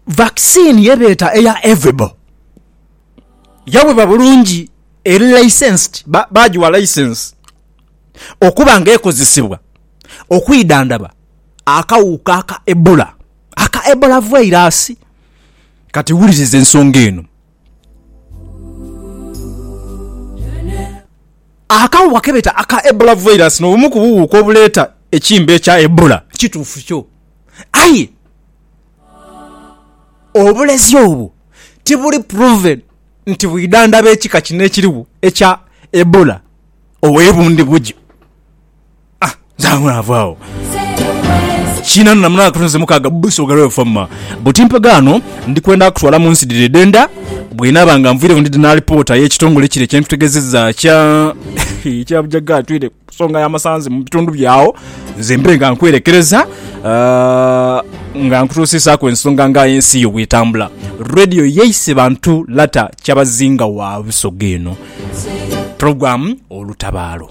Vaccine ye beeta eya Ervebo yawebwa bulungi eri licensed, baagiwa license okuba nga ekozesebwa okwidhandhaba akawuka aka Ebola, aka Ebola virus. Kati wuliriza ensonga eno. Akaawuwa kebeeta aka Ebola virus nobumu ku buwuuka obuleeta ekimbe ekya Ebola. Kituufu kyo. Aye obulezi obwo tibuli proven nti bwidhandaba ekika kino ekiriwo ekya Ebola owe bundi bugyo. Ah, nzangula ava awo kinanu na munana katonze mukaaga buso galwe famma buti mpagaano ndi kwenda kutwala mu nsi dhiri edhenda bwenaaba nga nviireku ndi na alipoota y'ekitongole kire kyentutegezeza kya ekya bujaga atwire ku nsonga y'amasanzi mu bitundu byawo nze mbe nga nkwerekereza ah, nga nkutuusisaaku ensonga nga ensi yo bwetambula radio yeise bantu lata kyabazinga wa busoga eno program olutabaalo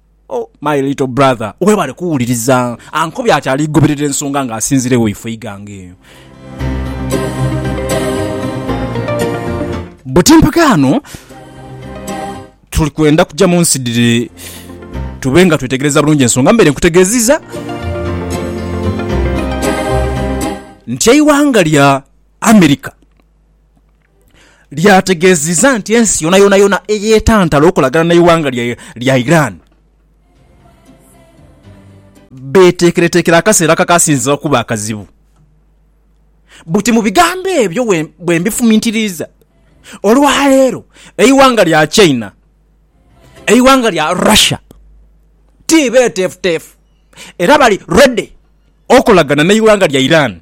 Oh my little brother webale kuwuliriza ankobye ati aligoberera ensonga nga asinzira ewo ifo eighanga eyo. Buti mpagaano tuli kwenda kuja munsi dhiri tube nga twetegereza bulungi ensonga mbere nkutegeziza nti eighanga lya America lyategeezizza nti ensi yonayonayona eyeetantala okolagana n'eighanga lya Iran beeteekereteekere akaseera akakaasinze okuba akazibu. Buti mu bigambo ebyo bwe mbifumintiriiza, olwaleero eighanga lya China, eighanga lya Russia ti beeteefuteefu era bali ready okolagana n'eighanga lya Iran.